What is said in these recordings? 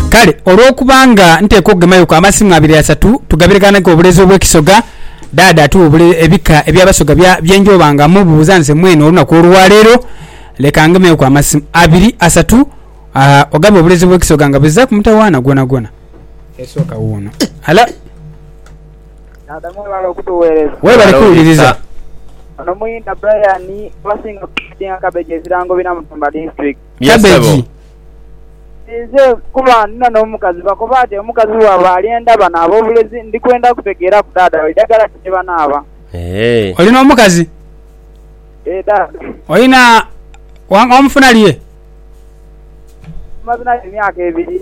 Kale olwokuba nga nteekwa okugemailuku amasimu abiri asatu tugabireghanhegho obuleezi obw'ekisoga, Dhaadha atuwa ebika eby'abasoga bye njooba nga mmubuuza nze mwene olunaku olwa leero. Leka ngemegheku amasimu abiri asatu ogabe obuleezi obw'ekisoga nga buzizaaku mutawaana gwonagwona. Esooka wuuno. Halo. Dhaadha mwebale okutugheereza. Webale kuwuliriza. Ono muyinda Brian abasinga okumanha nga Kabeja ebirango bina Mutumba District. Yes, Cabbage. Sebo. Ninze kuba ndina n'omukazi bakoba ati omukazi bwaba alyenda banaaba obulezi ndi kwenda kutegeeraku daada we idagala ki lyebanaaba. Eehh. Oli n'omukazi? Eeh daada. Olina wa- wamufunalye? Tumaze naye emyaka ebiri.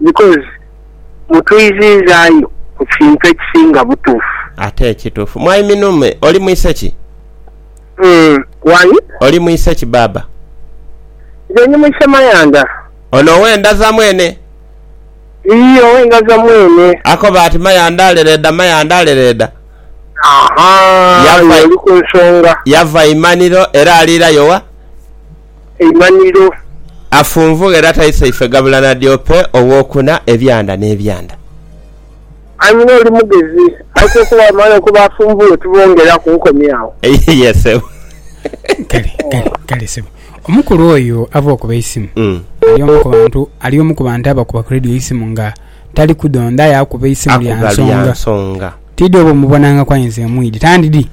Because mutwiziizaayo ku kintu ekisinga butuufu. Ate ekituufu. Mwai Minume, oli mwise ki? Umm why? Oli mwise ki baaba? Nze ndi mwise Mayanda. Ono owe Ndaza mwene? Iyii owe Ndaza mwene. Akoba ati Mayanda alereeda, Mayanda alereeda. Ahaa, Yava- y'oli ku nsonga. Yava Imaniro era aliirayo wa? eimanhiro. Afunvugha era taisa ife gabula na Diope ow'okuna, ebyanda n'ebyanda. Anyina oli mugezi. Aise okuba amaani okuba afunvughe tubongera ku nkomi agho. Yee sebo. Kale, kale, kale sebo. Omukulu oyo ava okuba eisimu, ali omu ku bantu, ali omu ku bantu abakuba ku radio eisimu nga tali kudhondha aye akuba eisimu lya nsonga. Tidhi oba omubonangaku aye nze mwidhi. Tandidhi.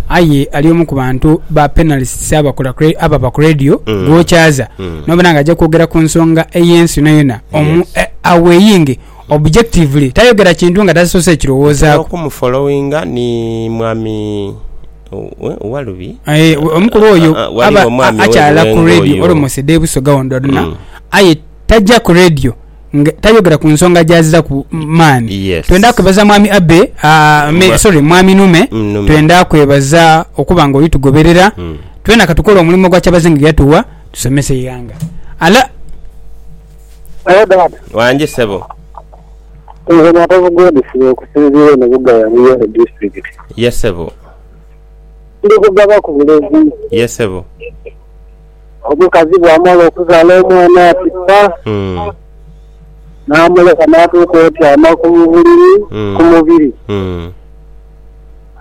Aye ali omu ku bantu ba panelists ababa ku radio mm. gwokyaza mm. nobona nga ajja kwogera ku nsonga ey'ensi yonayona omu yes. Eh, aweyinge objectively tayogera kintu nga tasoose ekirowoozaako okumufollowinga ni mwami walubi eh, omukulu oyo ah, ah, aba akyala ku radio olomosede ebusoga wondwaduna mm. aye tajja ku radio tayogera ku nsonga gyaziraku maani yes. twenda kwebaza mwami abe uh, me, sorry mwami nume, nume. twenda kwebaza okuba nga olitugoberera mm. twena katukola omulimu gwa kyabazinga yatuwa tusomese eighanga ala wangi sebo nze matovu godfrey okusinziira eno bugaya muyole district yesebo ndi kugaba ku bulezi yesebo Omukazi bw'amala okuzaala omwana ati ppa, n'amuleka n'atuuka otyama ku buliri ku mubiri,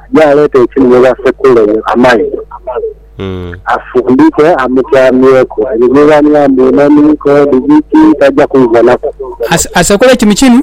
aje aleete ekinhwe basekule amaizi afundike amutyamyeku. Ebyo bye baniha mbu inamiiko, dhigiti, taja kwidhanaku. Asekule kinu kinu.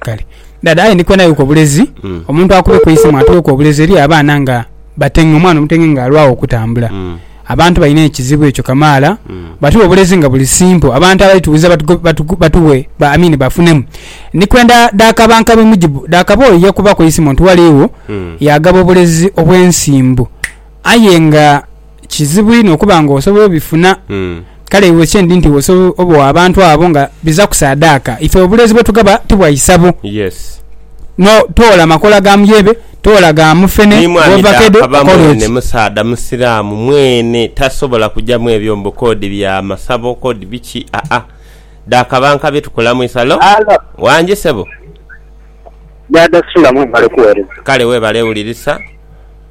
Kale dada aye ndikwenda yuko obulezi mm. omuntu akube kuisimu atuweku obulezi eri abaana nga batenge omwana omutenge nga alwawo okutambula mm. abantu balina ekizibu ekyo kamaala mm. batuwe obulezi nga buli simple abantu abaitubuza batuwe batu, batu, ba, I mean, bafunemu ndikwenda dakaba nkabe mujibu dakaba oyo yakuba kuisimu nti waliwo mm. yagaba obulezi obwensimbu aye nga Kizibu inho okuba nga osobola obifuna. Kale iwe kye ndi nti iwe osobola obogha abantu abo nga biza kusaadaaka. Ife obuleezi bwe tugaba ti bwa isabo. No, toola makoola ga muyebe, toola ga mufene, Ni mwami dha ovakedo, akaba kola mwene ki? musaadha Musiraamu mwene tasobola kuja mu ebyo mbu k'odi bya masabo k'odi biki, aa. Dha kaba nka bye tukola mu isalo. Wangi ssebo. Dada sula mwebale kuwereza. Kale webale wulirisa.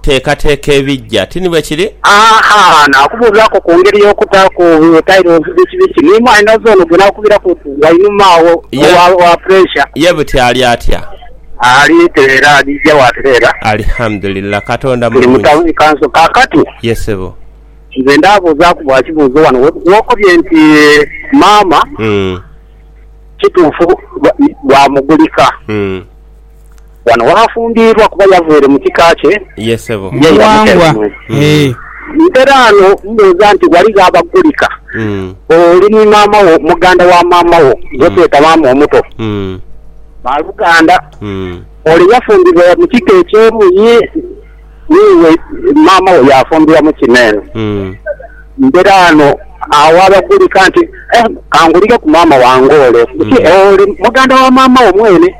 teekateeka ebijja. Ti ni bwe kiri? Haa, naakubuuzaaku ku ngeri y'okutaaku tayirozi dh'ekibi kino. Ni mwaina zoono gwe naakubiraku nti wainuma agho owa puresha? Ye buti ali atya? Ali tereera, ajiija bw'atereera. Alihamudulillah. Katonda mulungi. Tuli mu tauni ye kanso kaakati. Ye sebo. Nze ndaabuuzaaku bwa kibuuzo wano we okobye nti maama kituufu bwamugulika. Wano waafumbiirwa kuba yavaire mu kika kye, ye yamuteera omwe. Nteraano mbuuza nti, Ghaligho abagulika oli ni maama wo, muganda wa maama wo, gwe tweta maama omuto? Baaluganda, ole yafumbibwa mu kika eky'emu ye n'iwe maama wo yaafumbibwa mu kino eno. Nteraano agho abagulika nti, Ka ngulireku maama wange ole. Nti, Ole muganda wa maama wo mwene?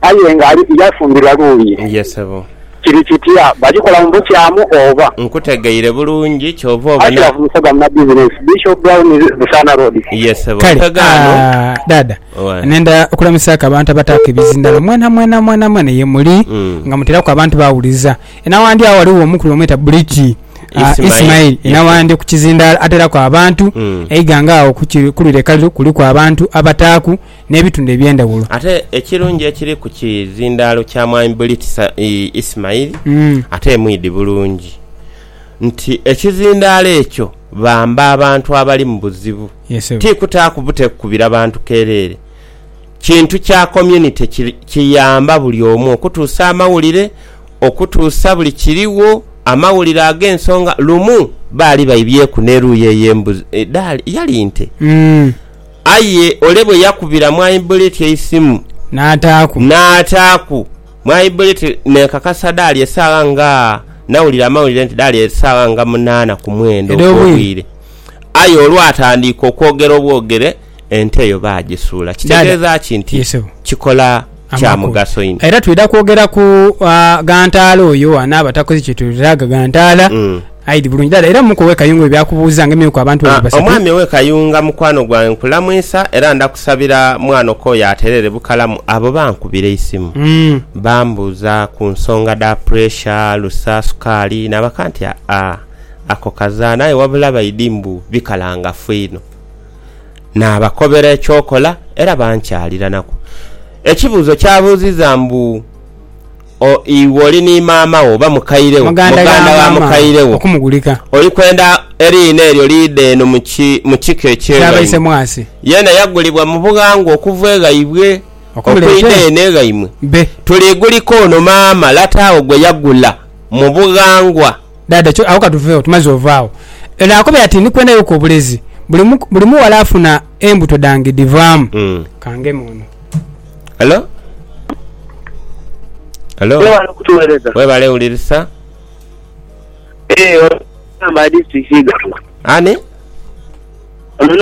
Aye nga ali yafumbirwa luuyi. Ye sebo. Kiri kitya? Bagikola mu bukyamu oba? Nkutegeire bulungi, kyova obona. Ashraf Musoga Munabizinensi, Bishop Brown Busaana Road. Ye sebo. Kale. Musoga ano. Aah Dhaadha, Owaye. nenda okulamisiaaku abantu abataaku ebizindalo mwenamwena mwenamwena ye muli nga muteeraku abantu bawuliza. E Nawandyo agho ghaligho omukulu bamweta Buliki aah Ismail. Ismail. E Ye sebo. Nawandyo ku kizindaalo ateeraku abantu. Eighanga agho ku ki, ku lire kaliru kuliku abantu abataaku. n'ebitundu eby'endhaghulo. Ate ekirungi ekiri ku kizindaalo kya Mwami Bulitisa ii Ismail ate mwidhi bulungi nti ekizindaalo ekyo bamba abantu abali mu buzibu, ti kutaaku bute kukubira bantu kereere. Kintu kya community kiyamba buli omu okutuusa amawulire, okutuusa buli kirigho, amawulire ag'ensonga. Lumu baali baibyeku n'eruuyi eyo embuzi, dhaali, yali nte? Aye ole bwe yakubira Mwaibbuleti eisimu n'ataaku, Mwaibbuleti n'ekakasa dhaali esaawa nga, nawulira amawulire nti dhaali esaawa nga munaana ku mwenda ogw'obwire. Aye olwatandiika okwogera obwogere, ente eyo baagisuula. Kitegeeza ki nti kikola? kya mugaso inho. Era twidha kwogera ku ghantaala oyo anaaba takoze kyetwetaaga ghantaala. Aidhi bulungi dala era muku owe Kayunga ebya kubuuza nga emyuka abantu babiri basatu. Omwami owe Kayunga mukwano gwange nkulamwisa era ndakusabira mwana okooye atereere bukalamu abo bankubira eisimu bambuuza ku nsonga dha puresha, alusa, sukaali nabaka nti aa ako kazana aye wabula baidhi mbu bikalangafu inho. naabakobera eky'okola era bankyaliranaku. Ekibuuzo kyabuuziza mbu, O iwe oli ni maama wo oba mukaire wo, muganda wa mukaire wo, oli kwenda eriina eryo liidhe eno mu kika eky'eghaimwe? Yeena yagulibwa mu bughangwa okuva eghaibwe okwidha eno eghaimwe. Tuliigulika ono maama lata agho gwe yagula mu bughangwa. Dhaadha kyo agho ka tuveegho tumaze ovaagho. Eno akoba yati ni kwenda yoku obulezi. Buli mu, buli mughala afuna embuto dhange dhivaamu. Ka ngeme ono. Hello? Hello? Webale kutuwereza. Webale wulirisa. Eeh, ono amba district Iganga. Ani? Ono.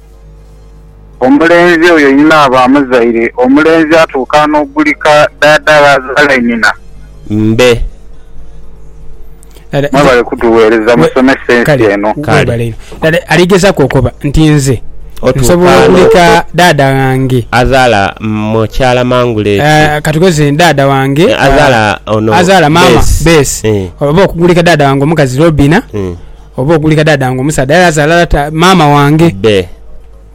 Omulenzi oyo inaaba amuzaire, omulenzi atuuka n'ogulika dhaadha gh'azaala inhina. Mbe. Mwebale kutugheereza musomesa ensi eno. Kale. Ali gezaku okoba nti nze nsobola ogulika dhaadha ghange. Azaala mukyala mangule ki? Katugeze dhaadha wange. Azaala ono Bess. Azaala maama Bess. Oba okugulika dhaadha wange omukazi Robina. Oba oguli kadada wange omusaadha aye azaala lata maama wange. Be.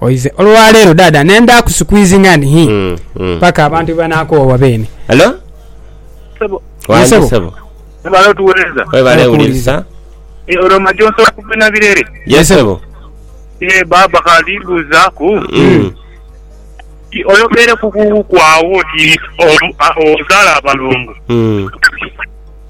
Oize olwaleero dada nenda ku squeezinga ni hii Mm, mm. paka abantu bwebanakoowa beene. Halo? Sebo, Wandhi Sebo. sebo. webale otuwereza. Webale wuliriza. Eh, olwo maji onsobola kuvina birere? Ye sebo. Eh, baba kati mbuzaaku. Mm. Ti oyogere ku ku- kwaawo ti olu- a- ozaala abalongo. Mm.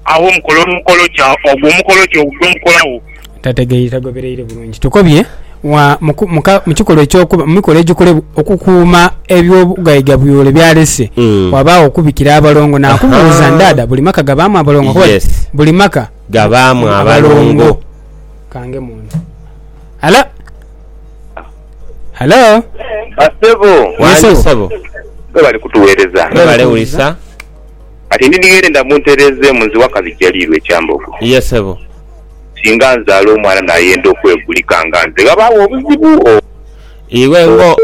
Agho mukole omukolo ki? Ogwo omukolo ki ogwo gwe mukolagho? Tategeire, tagobereire bulungi. Tukobye wa mu ku, mu ka, mu kikolwa eky'okuba, mu mikolo egikolebwa okukuuma eby'obugaigabuyole by'alese, Mm. wabaagho okubikira abalongo. Naakubuuza, Ahaa. ndaada, buli maka gabaamu abalongo? Nkoba nti, Yes. Buli maka Gabaamu abalongo. Kange munda. Halo? Halo? Bassebo. Yes, Wangi sebo. ssebo. Mwebale kutuweereza. Mwebale wulisa. Kati ndi nighere nda muntereezeemu nze waka bijaliirwe Kyambogo. Ye ssebo. Singa nzaala omwana nayenda okwegulika nga nze ghabaagho obuzibu o. Iwe ngo.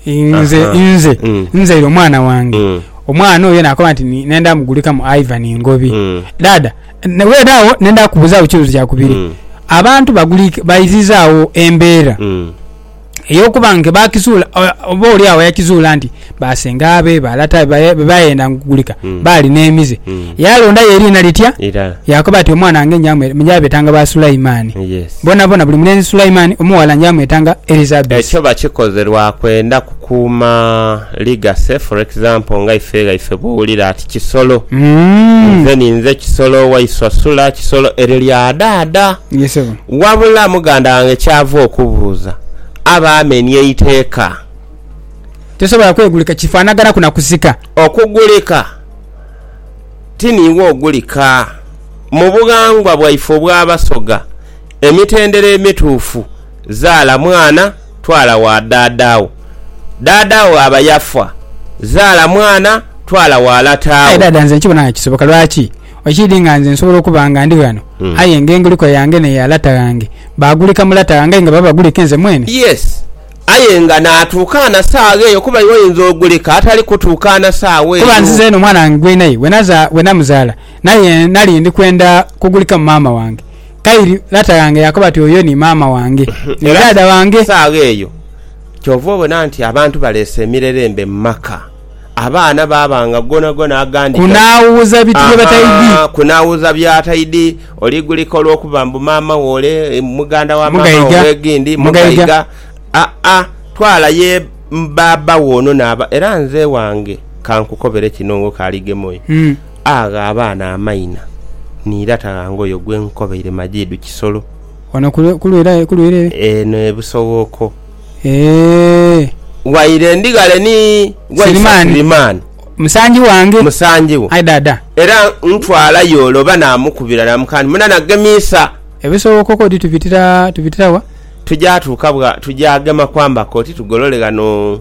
Nze, nze, nzaire omwana wange, omwana oyo nakoba nti nenda mugulika mu Ivan Ngobi. Dhaadha, wene agho nenda kukubuzaagho kibuuzo kya kubiri. Abantu bagulika, baizizaagho embeera. ey'okuba nga baakizuula oba oli agho yakizuula nti basenga be balata be be bayenda ngugulika Mm. baali n'emize Mm. yaalondayo eriina litya Irala. yaakoba ati omwana wange njamwe- njabetanga ba Sulaimani Yes. boonaboona buli mulenzi Sulaimani omughala njamwetanga Elizabesi Ekyo bakikoze lwa kwenda kukuuma legacy for example nga ife ghaife bw'owulira ati Kisolo. Mm. Nze ninze Kisolo, Waiswa Sula, Kisolo eryo lya dhaadha. Ye ssebo. Wabula muganda wange ky'ava okubuuza, aba amenie eiteeka. Tosobola kwegulika, kifaanaganhaku na kusika. Okugulika ti niiwe ogulika. Mu bughangwa bwaife obw'Abasoga, emitendera emituufu, zaala mwana twala wa dhaadha wo. Dhaadha wo bw'aba yafa, zaala mwana twala wa lata Aye wo. dhaadha, nze nkibona nga kisoboka. Lwaki? Ekiidhi nga nze nsobola okuba nga ndi ghano, aye nga enguliko yange n'eya lata ghange baagulika mu lata ghange aye nga baba bagulika inze mwene. Yes, aye nga naatuukaana saagha eyo, kuba iwe oyinza ogulika atali kutuukaana saagha eyo. Kuba nzize eno mwana wange gwe naye bwe namuzaala naye nali ndi kwenda kugulikamu maama wange. Kairi lata ghange yaakoba ati, Oyo ni maama wange, ni dhaadha wange. Saagha eyo kyova obona nti abantu baleese emirerembe mu maka. Abaana baabanga gonagona agandi gati. Kunaawuuza bitu bye bataidhi. Ahaa, kunaawuuza by'ataidhi. Oligulika olw'okuba mbu maama wo ole muganda wa maama wo mwegindi, mugaiga. Aa, twala ye baaba wo ono n'aba. Era nze ewange ka nkukobere kino ng'okaaligema oyo. Agha abaana amaina ni irata ghange oyo gwe nkukobeire Majidu Kisolo. Wano ku lwira ere. Eno e Busowooko. Eeh. Waire ndi ghale ni Waisa Sulimani. Musangi wange. Musangi wo. Aye Dhaadha. Era ntwala yo ole oba namukubira namuka nti muna nagemiisa. Ebisoboka koti tubitira wa? Tuja tuuka bwa tuja gema kwamba koti tugolole ghano.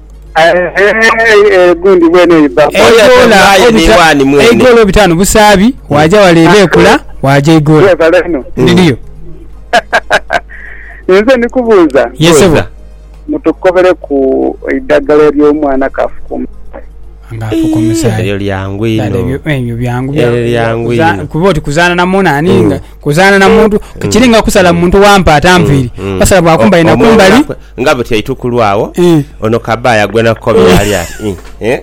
Eigoola obitaanu busaabi, waaja wale ebeekula, waaja eigoola. Ndidiyo. Nze ndi kubuuza. Ye sebo. Mutukobereku eidagala ery'omwana kaafuka omusaayi. Nga afuka omusaayi. Eryo lyangu inho. Ebyo byangu bya kuba oti kuzaana na munaani nga Kuzaana na muntu kiri nga kusala muntu wa mpaata nviiri, basala bwa kumbali na kumbali. Omuwala kwe nga buti eitukulu agho, Ii. ono kabaaya gwe nakukobera ali ati, Ii, ee.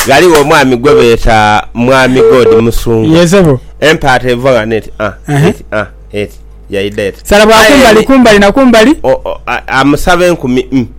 Ghaligho omwami gwe beeta Mwami God Musungu. Yee, sebo. Empaata eivwa nga n'eti, ah, Ehe. eti, ah, eti, yaidha eti. Sala bwa Aye kumbali ni- kumbali na kumbali. o- o- a- amusaba enkumi, mm.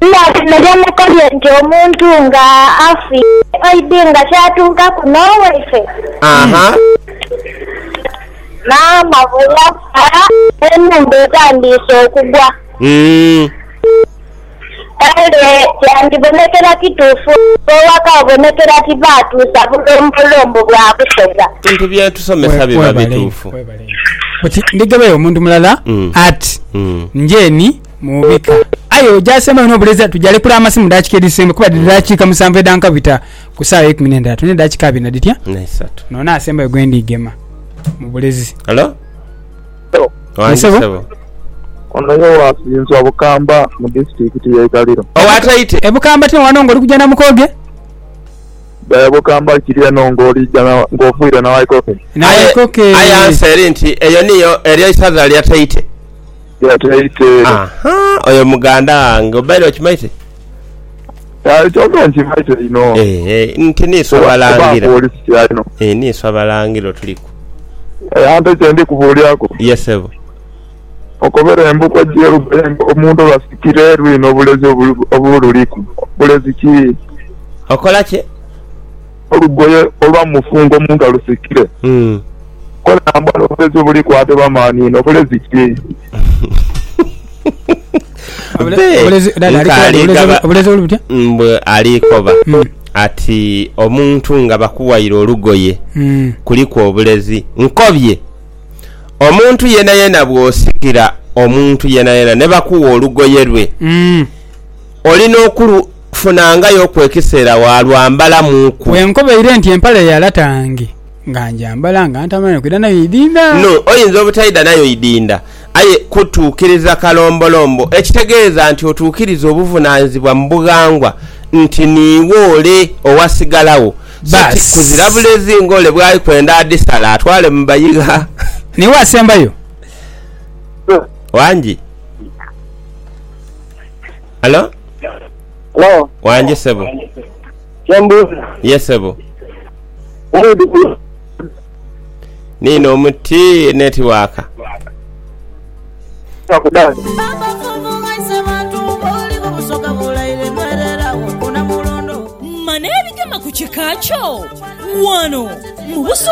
Ela bino byemukolye nti omuntu nga afiire oidhi nga kyatuukaku n'owaife maama bwe yafa n'enhumba etandiise okugwa. Kale kyandibonekera kituufu nga owaka obonekera ti baatuusa bulombolombo bwa busoga. Ebintu bye tusomesa biba bituufu. Oti ndigebeyo omuntu mulala ati njeeni? Muubika. Aye oja asembayo n'obuleziya tujalekura amasi mu daakika edhisembayo kuba dhiri daakika musanvu edha nkabita ku saawa eikumi n'endhatu n'edaakika abiri na dhitya? N'eisatu. N'ono asembayo gwe ndiigema mu bulezi. Halo? Halo. Ye Wangi ssebo? ssebo. Ono ye wa Kinswa Bukamba mu disitulikiti y'e Kaliro. Owa Taite. E Bukamba tino wano ng'oli kuja Namukoge? E Bukamba kiri eno ng'olija na- ng'oviire Nawaikoke. Aye, Nawaikoke. aye ansa eri nti eyo niyo, eryo isaza lya Taite. Yataite. Aha, oyo muganda wange. Obaire okimaite? Aye kyoka nkimaite inho. Eeh, nti niiswe Abalangira. Kuba oli sitya inho. Eeh, niiswe Abalangira otuliku. Ante kyendi kubuuliraku. Ye ssebo. Okobera embugo edheru aye nga omuntu basikira eru inho obulezi obululiku. Bulezi ki? Okola ki? olugoye olwa mu mufungo omuntu alusikire. Kole nambwale obulezi obuli kwate bamani ino bulezi ki? Mbu ali koba hmm. ati omuntu nga bakuwaire olugoye hmm. kuliku obulezi nkobye omuntu yena yena bwosikira omuntu yena yena nebakuwa olugoye lwe hmm. olina okulu kufunangayo ku ekiseera waalwambalamuuku. Bwe nkobaire nti empale ya latange nga ngyambala nga ntamanya kwidha nayo idinda. No, oyinza obutaidha nayo idinda, aye kutuukiriza kalombolombo, ekitegeeza nti otuukiriza obuvunaanyizibwa mu bughangwa nti niiwe ole owasigalagho, so ti kuzira bulezi ng'ole bw'ali kwenda adhisale atwale mu bayigha. Niiwe asembayo. Wangi. Halo? Halo? Wangi sebo. Kyembuuza. Ye sebo. Niino omuti netiwaaka. Mane ebigema ku kika kyo wano mu Busoga.